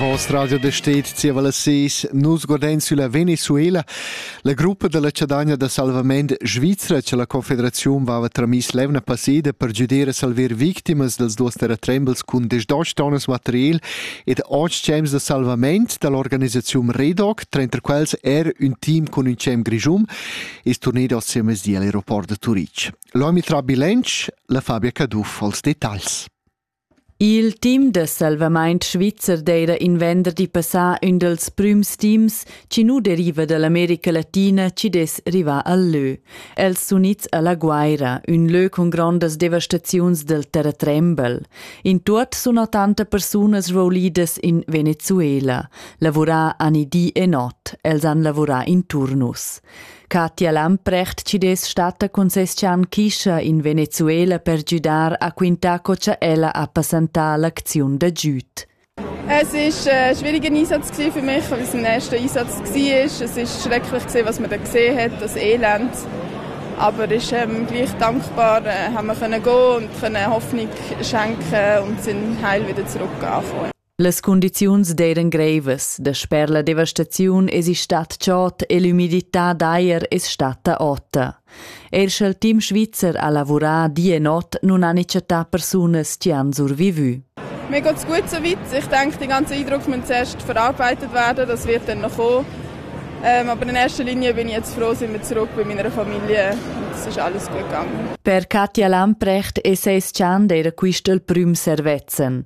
Voss radio da stet zieva las seis nus guardain sulla Venezuela, la gruppa da la chadagna da salvament svizra che la Confederaziun vava tramis l'evna passeda per giuder a salver victimas dels duos terratrembels cun desdosch tonnas material ed otg cems da salvament da l'organisaziun Redoc, tranter quels er ün team cun ün cem grischum, es turnedo sia mesdia all'aeroport da Turitg. L'homi tra bilanc, la Fabia Caduff als detagls. Il team da salvamaint svizzer d'eira in venderdi passà ün dals prüms teams chi nu deriva da l'America Latina chi dess rivar al lö. Els sun its a La Guaira, ün lö cun grondas devastaziuns dal terratrembel. In tuot sun ottanta persunas roulidas in Venezuela. Lavurà ani di e not. Els han lavurà in turnus. Katja Lamprecht ci dess stata cun ses chan Kischa in Venezuela per giudar a quintar co cha ella ha passantà l'acziun da giüd. Es ist ein äh, schwieriger Einsatz für mich, weil es mein erster Einsatz war. Es ist schrecklich, was man da gesehen hat, das Elend. Aber ist ähm, gleich dankbar, äh, haben wir können gehen und können Hoffnung schenken und sind heil wieder zurück angekommen. Las cundiziuns d'eiran greivas, dasper la devastaziun esi stat chod e l'umidità d'eir es statta ota. Eir scha'l team svizzer ha lavurà di e not nun han i chattà persunas chi han survivü. Mir geht's gut soweit. Ich denke, den ganzen Eindruck muss zuerst verarbeitet werden. Das wird dann noch kommen. Ähm, aber in erster Linie bin ich jetzt froh, sind wir zurück bei meiner Familie. Und es ist alles gut gegangen. Per Katja Lamprecht es eis chant era quist il prüm servezzan.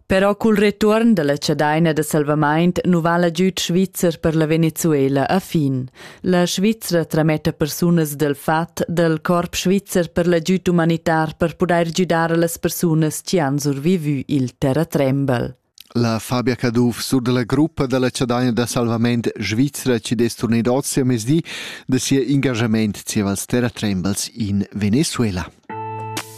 Però cul retuorn dalla chadaina da salvamaint nu vala giüd svizzer per la Venezuela a fin. La Svizra trametta persunas dal fat dal corp svizzer per l'agüd umanitar per pudair güdar a las persunas chi han survivü il terratrembel. La Fabia Caduff sur dalla gruppa dalla chadaina da salvament svizra ci des turnit oz a mesdi da sia engagament zieva als terratrembels in Venezuela.